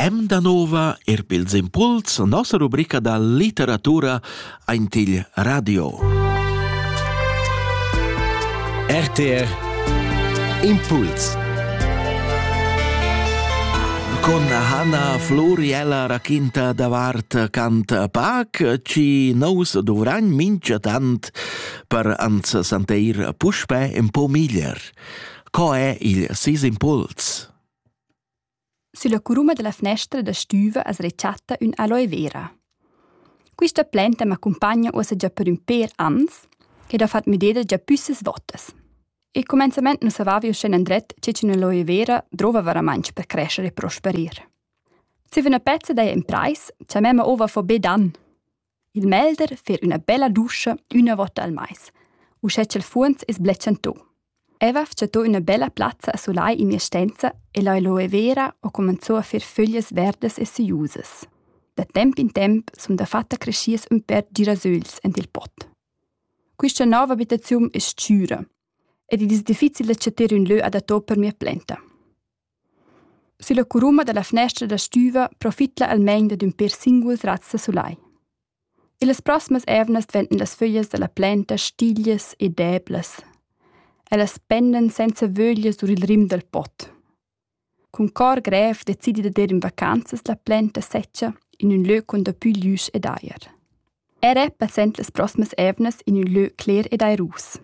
Em da nova er pils impuls nossa rubrica da literatura aint il radio. RTR Impuls Con Hanna Floriella raquinta davart cant pac ci nous dovrain mincha tant per ans santeir puspè un po miglier. Co è il sis impuls? Sulla curuma della finestra da stüva as rechatta ün aloe vera. Quista planta m'accumpagna uossa già per ün pêr ans ed ha fat müdeda già püssas votas. E comenzament nu savavi uschè andret che ch'ün aloe vera drova varamantsch per crescere e prosperir. Zieva üna pezza daja in prais cha memma ova fo be dan. Il melder fer üna bella duscha üna vota al mais, uschè cha'l fuonz es bletschantò. Eva fchatò üna bella plazza a sulai in mia stenza e l'aloe vera ho comanzò a fer föglias verdas e seiusas. Da temp in temp sun dafatta creschias ün pèr girasögls ant il pot. Quista nova abitaziun es stüra ed id es difficil da chatter ün lö adatto per mia plenta. Sülla curuma da la fnestra da stüva profitla almain dad ün per singuls razs da sulai. Illas prosmas eivnas dventan las föglias da la planta stiglias e deblas. Ellas pendan senza vöglias our il rim dal pot. Cun cor grev decidi dad ir in vacanzas la planta sezcha in ün lö con dapü glüsch ed ajer. Era passend las proximas eivnas in ün lö cler ed airus.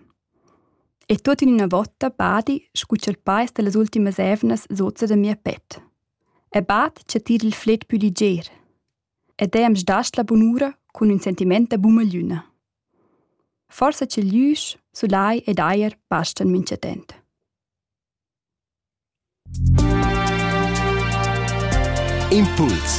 E tuot in üna votta badi scu cha'l pais da las ultimas eivnas sozza da mia pet. E bad cha tira il fled pü liger. Ed eau am sdasd la bunura cun ün sentimaint da bumagliüna. Forsa cha glüsch, sulai ed ajer bastan minchatant. Impuls